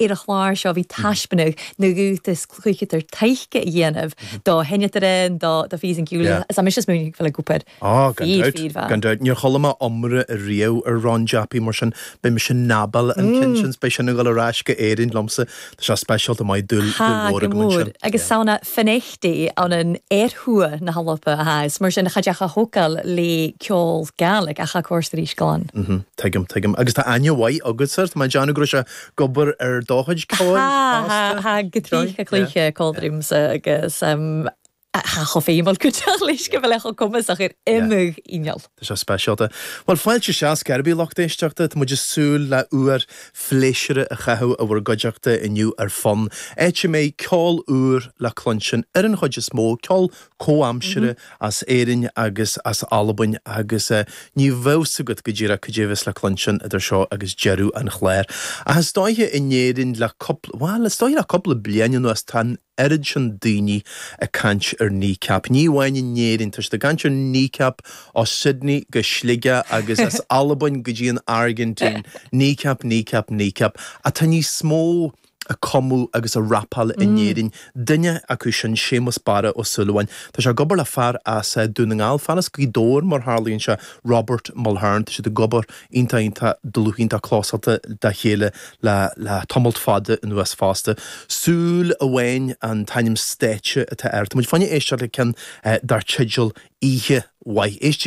Ar an chlár seo bhí taispeánadh na rúta is cúigetar taic a dhéanamh do sheinneadairean, do Fives and Giulia, is ambitious move ag Philip Cooper. Oh, gan dabht, gan dabht. Níor chuala mé iomrá riamh ar Ron Jappy, mar sin beidh mise in ann, bhuel, an ceann sin, beidh sin ag dul ar ais go Éirinn liomsa, tá sé speisialta maith, dúil mhór agam ansin. Tá, go mór, agus 's ann à Finechty ann an ear-thuath na h-Alba a tha e, is mar sin cha deach a thogail le ceòl Gàidhlig, ach tha e a' còrdadh ris glan. Tuigim, tuigim. Agus tá aithne mhaith agatsa air, tá mé ag déanamh go raibh sé. ag obair ar do chuid ceoil fosta. Tha, gu tric a' cluich còmhla riumsa agus tha e cho feumail gu dearbh leis gu bheil e cho comasach air iomadh inneal. Tá sé speisialta. Bhuel, fáilte isteach cé ar bith lucht éisteachta. Tá muid ag súil le uair phléisiúrtha a chaitheamh i bhur gcuideachta inniu ar Fonn, áit a mbeidh ceol úr le cluinstin, ar an chuid is mó, ceol comhaimseartha as Éirinn agus as Albain agus ní bheadh 's agat go díreach cad é a bheas le cluinstin idir seo agus deireadh an chláir. Ach is dóiche in Éirinn le cúpla, bhuel, is dóiche le cúpla bliain anuas tá an oiread sin daoine ag caint ar Kneecap, ní amháin in Éirinn, tá siad ag caint ar Kneecap ó Sydney go Sligeach agus as Albain go dtí an Airgintín, Kneecap, Kneecap, Kneecap. Ach tá níos mó. ag cumadh agus ag rapáil in Éirinn. Duine acu sin Séamus Barra Ó Súilleabháin. Tá sé ag obair le fear as Dún na nGall, fear as Gaoth Dobhair mar tharlaíonn sé, Robert Mulhern. Tá siad ag obair iontach iontach dlúth, iontach clósáilte dá chéile le tamalt fada anuas fosta. Súil Amháin an t-ainm stáitse atá air. Tá muid chun éisteacht le ceann dar teideal Oíche Mhaith. Éistigí.